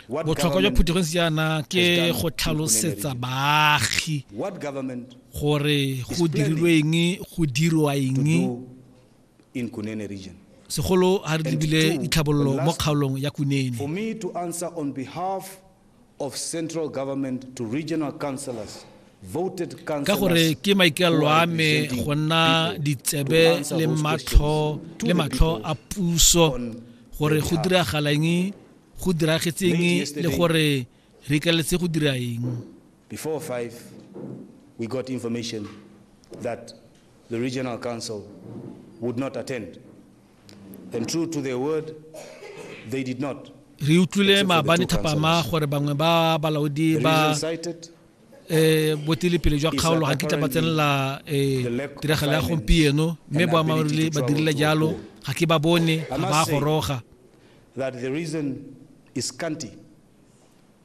botlhokwa jwa phuthegong jaana ke go tlhalosetsa baagi gore go dirilwe eng go dirwa eng segolo ga re lebile ditlhabololo mo kgaolong ya kunene ka gore ke maikalelo a me go nna ditsebe le matlho le matlho a puso gore go diragalang go diragetseng le gore re ikaletse go dira eng before 5 we got information that the regional council would not attend And true to their word, they did not. re utlwile maabane thapama gore bangwe ba balaodi ba eh botilepele jwa kgaolo ga kitla ba tsenela eh tiragalo ya gompieno mme boammaaruri ba dirile jalo ga ke ba bone ga ba goroga that the reason is scanty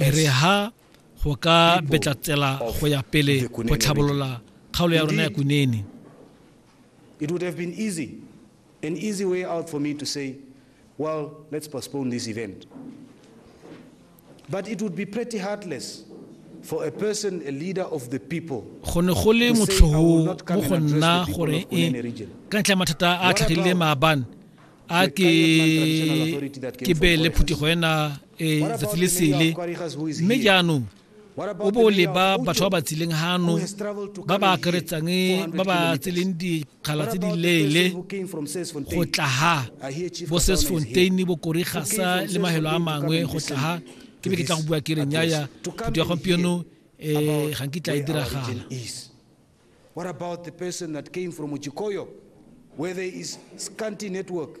e re ha go ka betla tsela go ya pele go tlhabolola kgaolo ya rona ya kunene it would have been easy an easy way out for me to say well let's postpone this event but it would be pretty heartless for a person a leader of the people go ne go le motlhoho mo go nna gore e ka ntlha mathata a tlhagileng maabane a ke ke be le phuthego ena ee tsatsi le sele mme jaanong o bo leba batho ba ba tsileng gano ba ba akaretsang ba ba tseleng dikgala tse di leele go tla ga bo sesfontein bo korigasa le mahelo a mangwe go tla ga ke be ke tla go bua ke reng yaya phuto ya gompieno um ga nkitla e diragala What about the person that came from Ujikoyo, where there is scanty network?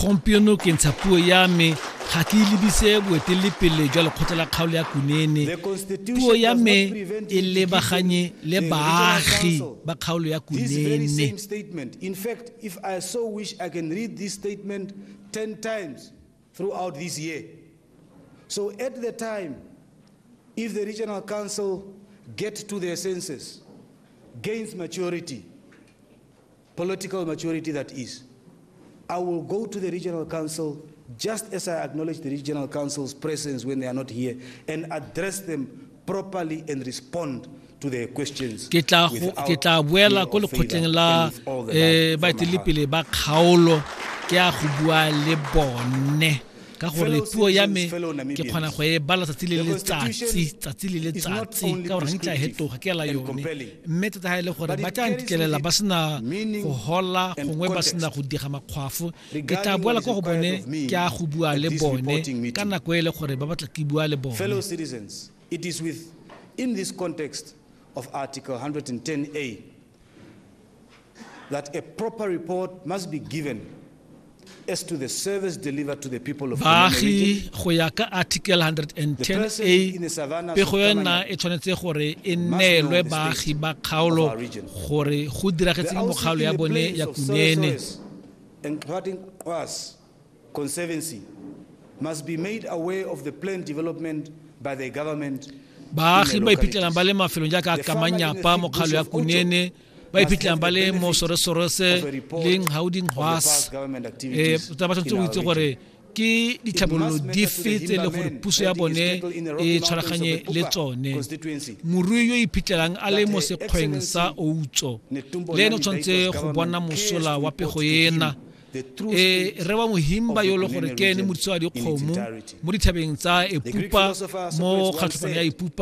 gompieno ke ntsha puo ya me ga ke lebise boeteledipele jwa lekgotla la kgaolo ya kunene puo ya me e lebaganye le baagi ba kgaolo ya kunene throughout this year. So at the time, if the regional council get to their senses, gains maturity, political maturity that is, I will go to the regional council just as I acknowledge the regional council's presence when they are not here and address them properly and respond to their questions. Ke tla ke tla buela ko lekgotleng la eh baeteledipele ba kgaolo ke a go bua le bone. ka gore puo ya me ke kgona go e bala tsatsi le letsatsi tsatsi le letsatsi ka gore ntša hetoga ke ela yone mme tota ga e le gore ba tla ntitlelela ba sena go hola gongwe ba sena go diga makgwafo ke tla boela ko go bone ke a go bua le bone ka nako e le gore ba batla ke bua le bone It is with, in this context of Article 110A that a proper report must be given as to the service delivered to the people of baagi go ya ka article 110a pego yona e tshwanetse gore e neelwe baagi ba kgaolo gore go diragetseng mo kgaolo ya bone ya kunene Conservancy must be made aware of the planned development by the government baagi ba iphitlhelang ba le mafelong jaaka kamanyapa mokgalo ya kunene ba iphitlhelang ba le mo soresorese leng gauding hwas um eh, ba tshwanetse go itse gore ke ditlhabololo dife tse e le gore puso ya bone e tshwaraganye le tsone morui yo iphitlhelang a le mo sekgweng sa outso le ene o tshwanetse go bona mosola wa pego ena e rewa mohimba yo le gore ke ene modisa wa dikgomo mo dithabeng tsa epupa mo kgatlhopong ya epupa